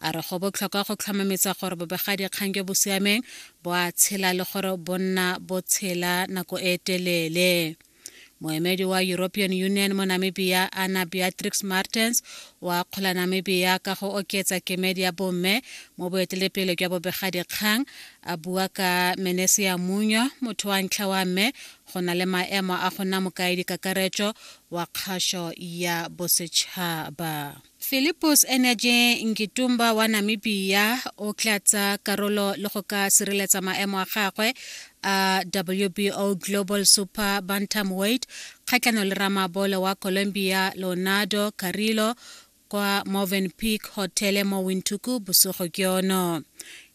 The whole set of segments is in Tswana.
A re go botlhokwa go tlhomametsa gore bobegadikgang jo bo siameng bo a tshela le gore bo nna bo tshela nako e telele. Moemedi wa European Union mo Namibia Anna Beatrix Martens o akgola Namibia ka go oketsa kemedi ya bomme mo boetelepele jwa bobegadikgang a bua ka Menesia Munyo motho wa ntlha wa mme go na le maemo a go nna mokaedi kakaretso wa kgašo ya bosetšhaba. Philippus Energy Ngitumba wa Namibia o tla tsa karolo le go ka sireletsa maemo a gagwe a WBO Global Super Bantamweight kgatlhanong le ramabolo wa Colombia Leonardo Carrillo kwa Morven Peak Hotel mo Windhoek bosigo ke yono.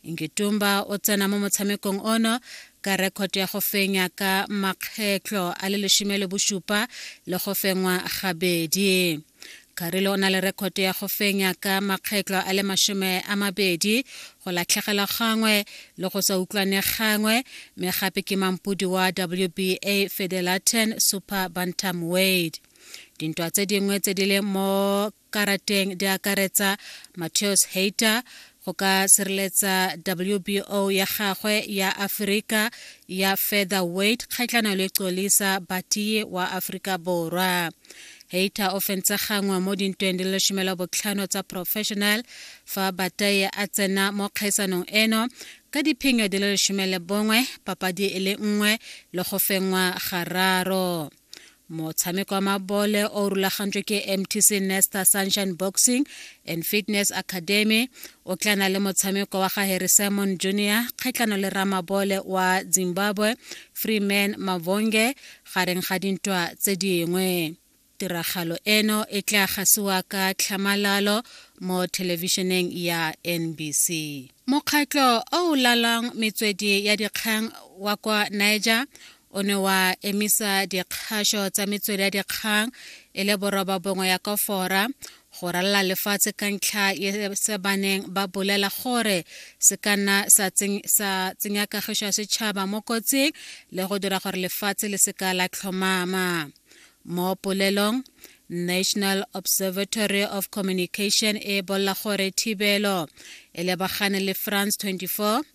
Ngitumba o tsena mo motshamekong ono ka rekhoto ya go fenya ka makgetlho a le lesome le bosupa le go fengwa gabedi. Karile o na le rekoto ya go fenya ka makgetlo a le masome a mabedi go latlhegelwa gangwe le go sa utlwane gangwe mme gape ke mampodi wa WBA Fedelaten Super Bantam Wade. Dintwa tse dingwe tse di le mo karateng di akaretsa Mateus Hayter, go ka sireletsa wbo ya gagwe ya aforika ya feather weight kgatlhano le colisa batiye wa aforika borwa heita o fentse gangwe mo dintweng di le šomela botlhano tsa professional fa bataye a tsena mo kgaisanong eno ka diphenyo di le lesome le bongwe papadi e le nngwe le go fengwa gararo motshameko wa mabole o rulagantswe ke mtc nesta sunshine boxing and fitness academy o tla na le motshameko wa ga harry simon junior kgatlhano le ramabole wa zimbabwe freeman mavonge gareng ga dintwa tse dingwe tiragalo eno e tla gasiwa ka tlhamalalo mo thelebišeneng ya nbc mokgatlho o o lalang metswedi ya dikgang wa kwa niger o ne wa emisa dikgasho tsa metswedi ya dikgang e le boroba bongwe ya kofora go ralala lefatshe ka ntlha ye se baneng ba bolela gore se ka nna sa tsenya kagišo ya setšhaba mo kotsing le go dira gore lefatshe le seka la tlhomama mo polelong national observatory of communication e bolla gore thibelo e lebagane le france 24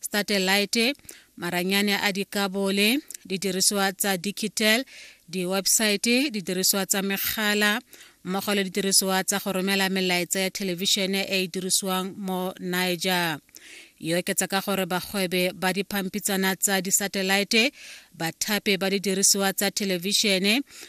satellite maranyane a dikabole didirisiwa tsa digital di-website didirisiwa tsa megala mmogo le didirisiwa tsa go romela melaetsa ya thelebišene e e dirisiwang mo niger e oketsa ka gore bagwebe ba diphampitsana tsa disatellite bathapi ba didirisiwa tsa thelebišene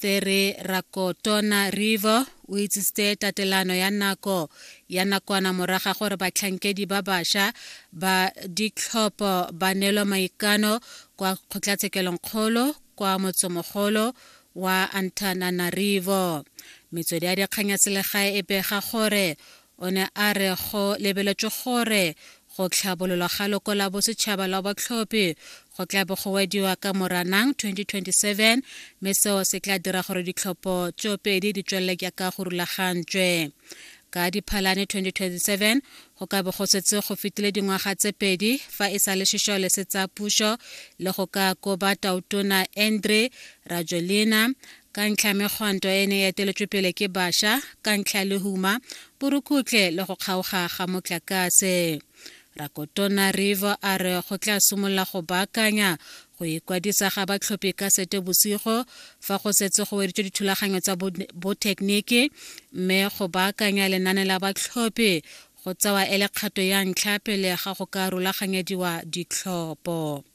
There Rakotona River o itsisitse tatelano ya nako ya nakwana moraga gore batlhankedi ba basha ba ditlhopho ba neelwa maikano kwa kgotlatshekelongkgolo kwa motsomogolo wa Antananarivo. Metswedi ya dikgang ya selegae e bega gore O ne a re go lebeletswe gore go tlhabololwa ga loko la bosetšhaba la batlhophi go tla bo go wediwa ka moranang 2027 mme seo se tla dira gore ditlhopho tsoopedi di tswelele jaaka go rulagantswe ka diphalane 2027 go ka bo go setse go fetile dingwaga tse pedi fa e sa le sešole se tsa puso le go ka koba tautona andre rajolina Ka ntlha ya megwanto e ne e eteletswe pele ke basha ka ntlha ya lehuma, borukhutlhe le go kgaoga ga motlakase, Rakotona Rivo a re go tla simolola go baakanya go ikwadisa ga batlhophi ka Setebosigo fa go setse go weditswe dithulaganyo tsa bothekeniki mme go baakanya lenane la batlhophi go tsewa e le kgato ya ntlha pele ga go ka rulaganyediwa ditlhopho.